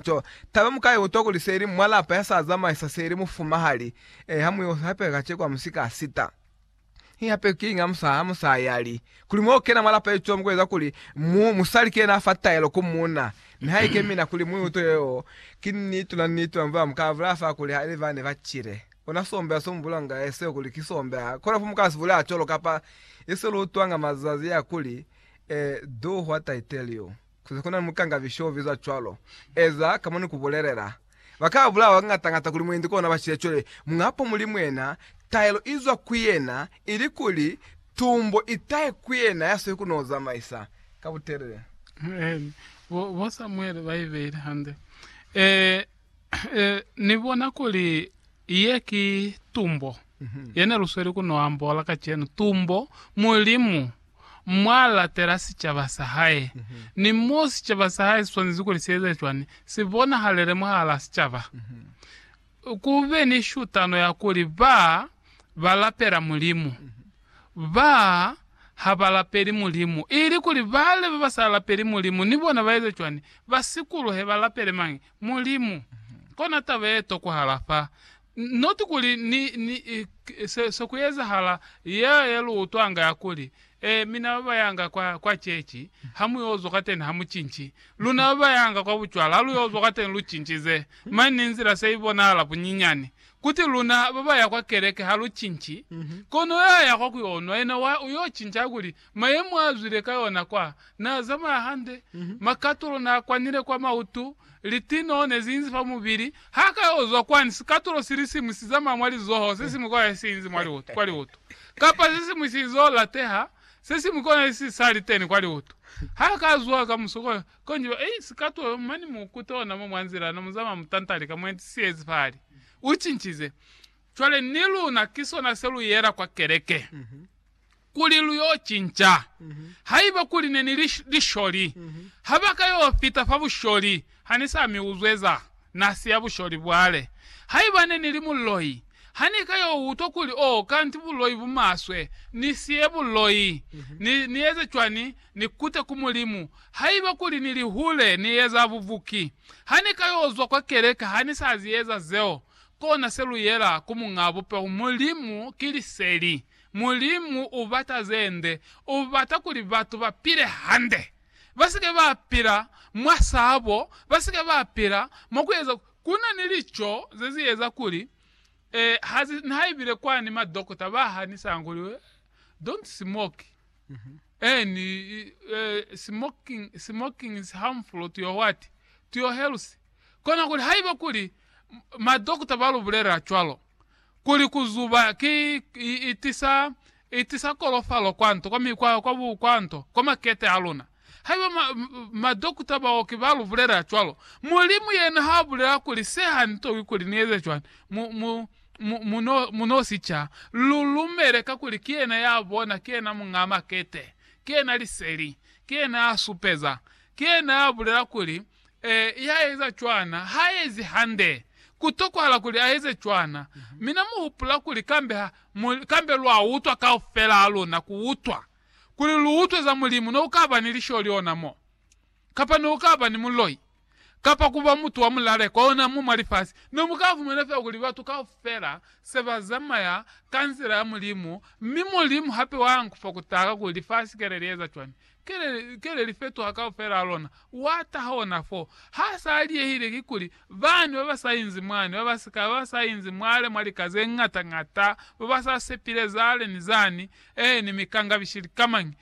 To, taba mu ka i utwa kuli seli mwa lapa ya sa zamaisa seli mufumahali, e, ha mu yo hapeka kaceko ha mu si ka sita. Hi hapeki kiñi ha mu sa, ha mu sa yali. Kuli mwa ku kena mwa lapa icwamo ku eza kuli mu, musali ki yena a fa taelo ku munna. Nihaike mina kuli mu i utwe yeo, ki niti luna, niti luna, mba mu ka bulela fa kuli ha ili bani ba cile. Ona sombeha so mu bulanga e seo kuli ki sombeha. Kono fa mu ka si bulela cwalo, kapa, ye se lu utwanga mazazi a kuli, e, do hwa taiteliyo. Ku na ni mukangabi sho bizwa cwalo. Eza ka mo ni ku bulelela. Ba ka bulawa kañata-ñata kuli mwendi kona ba shile cwale muñ'a po muli mwena, taelo i zwa ku yena, ili kuli, tumbo i tahe ku yena ya sweli ku n'o zamaisa ka butelele. Amen. Bo Samuele ba i beile hande. Ee. E, ni bona kuli ye ki tumbo yene lu sweli ku no ambola kacenu, tumbo Mulimu mwa latela sicaba sa hae, ni mo sicaba sa hae si swanezi kuli si eze cwani, si bonahalele mwahal'a sicaba. Ku be ni shutano ya kuli ba ba lapela Mulimu, ba ha ba lapeli Mulimu, ili kuli bale ba ba sa lapeli Mulimu ni bona ba eze cwani, ba sikuluhe ba lapele mañi? Mulimu. Kona taba ye tokwahala fa, not kuli ni, ni, se, se ku ezahala, ya, ya lu utwanga ya kuli, Eh, mina ba ba yanga kwa, kwa chechi, ha mu yo zwa kateni ha mu cinci. Luna ba ba yanga kwa bucwala, ha lu yo zwa kateni lu cincize. Mani ni nzila se i bonahala bunyinyani. Kuti luna ba ba ya kwa keleke ha lu cinci. Kono ya ya kwa ku yo nwa, yena wa, u yo cinca, a kuli, Mayemo a zwile ka yona kwa n'a zamaya hande, makatulo n'a kwanile kwa mautu, litinoo ne zi inzi fa mubili. Ha ka yo zwa kwani, sikatulo si li siñwi si zamaya mwa lizoho, se siñwi kona si inzi kwa liutu, kapa se siñwi si zo lateha, se siñwi kona si sa li teni kwa liutu. Ha ka zwa ka muso ko, ko nji ba, Ei, sikatulo, mane mu kute ona mo mwa nzila, na mu zamaya mutanta lika, mu enti siyezi fahali. U cincize. Cwale ni luna ki sona se lu yela kwa keleke, kuli lu yo cinca. Haiba kuli ne ni li lisholi, ha ba ka yo fita fa busholi, ha ni sa mi uzwe za na siya busholi bwale. Haiba ne ni li muloi, ha ni ka yo utwa kuli, Oh, kanti buloi bu maswe, ni siye buloi. Ni, ni eze cwani? Ni kute ku Mulimu. Haiba kuli ni li hule, ni eza bubuki. Ha ni ka yo zwa kwa keleke, ha ni sa zi eza zeo. Kona se lu yela ku Muñ'a Bupeho, Mulimu ki Liseli. Mulimu u bata ze nde. U bata kuli batu ba pile hande, ba si ke ba pila mwa sabo, ba si ke ba pila mwa ku eza. Ku na ni lico ze zi eza kuli, eh, ha zi, nihaibile kwani madokota ba hanisanga kuli, eh, don't smoke, eh, ni, eh, smoking, smoking is harmful to your what? To your health. Kona kuli haiba kuli madokota ba lu bulela cwalo, kuli ku zuba ki, i, i tisa, i tisa kolofalo kwanto, kwa mi, kwa, kwa bu, kwanto, kwa makete a luna. Haiba ma, madokota, baoki ba lu bulela cwalo, Mulimu yena ha bulela kuli se ha ni tokwi kuli ni eze cwani, mu, mu, mu, mu no, mu no si ca. Lu lumele kakuli ki yena ya bona, ki yena Muñaa Makete, ki yena Liseli, ki yena ya supeza, ki yena ya bulela kuli Ee, i ha eza cwana. Ha ezi hande. Ku tokwahala kuli a eze cwana. Mina mu hupula kuli kambe ha, mu, kambe lwa utwa kaufela ha luna, ku utwa, kuli lu utwe za Mulimu, ne u ka ba ni lisholi ona mo, kapa ne u ka ba ni muloi, kapa ku ba mutu wa mulaleko ona mo mwa lifasi, ne mu ka fumana fela kuli batu kaufela se ba zamaya ka nzila ya Mulimu, mi Mulimu hape wa nkufa ku taha ka kuli lifasi ke le li eza cwani. Ki le li fetoha kaufela lona. Wa taha ona fo. Ha sa liyehile kikuli bani ba ba sa inzi mwani, ba ba sika, ba ba sa inzi mwale mwa lika ze ñata ñata, ba ba sa sepile zale ni zani, eh, ni mikangabishi likamañi,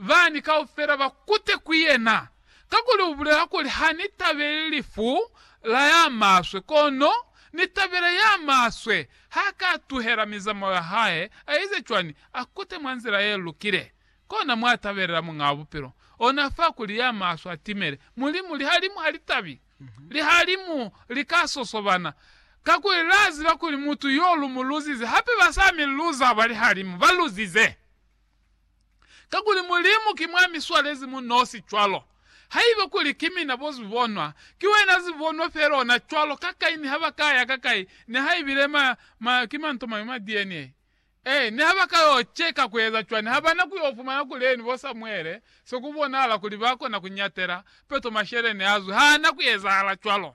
bani kaufela ba kute ku yena. Kakuli u bulela kuli, Ha ni tabeli lifu la ya maswe, kono Ni tabela ya maswe. Ha ka tuhela mizamao ya hae, a ize cwani? A kute mwa nzila ye lukile. kona mwa tabelela Muñaa Bupilo, ona fa kuli ya maswe a timele. Mulimu, lihalimu ha li tabi. Lihalimu li ka sosobana, kakuli la ziba kuli mutu yo lu mu luzize. Hape ba sa mi luza ba lihalimu, ba luzize, kakuli Mulimu ki mwa mi swalezi mu nosi. Cwalo, haiba kuli ki mina bo zibonwa, ki wena zibonwa fela ona. Cwalo, ka kai, ni ha ba ka ya ka kai, ni ha ibile ma, ma, ki manto mañwi ma DNA, Ee, niha ba ka yo ceka kueza cwani, ha ba na ku yo fumana kuli eni bo Samuele, se ku bonahala kuli ba kona ku ñatela peto masheleñi a zwi. Ha na ku ezahala cwalo.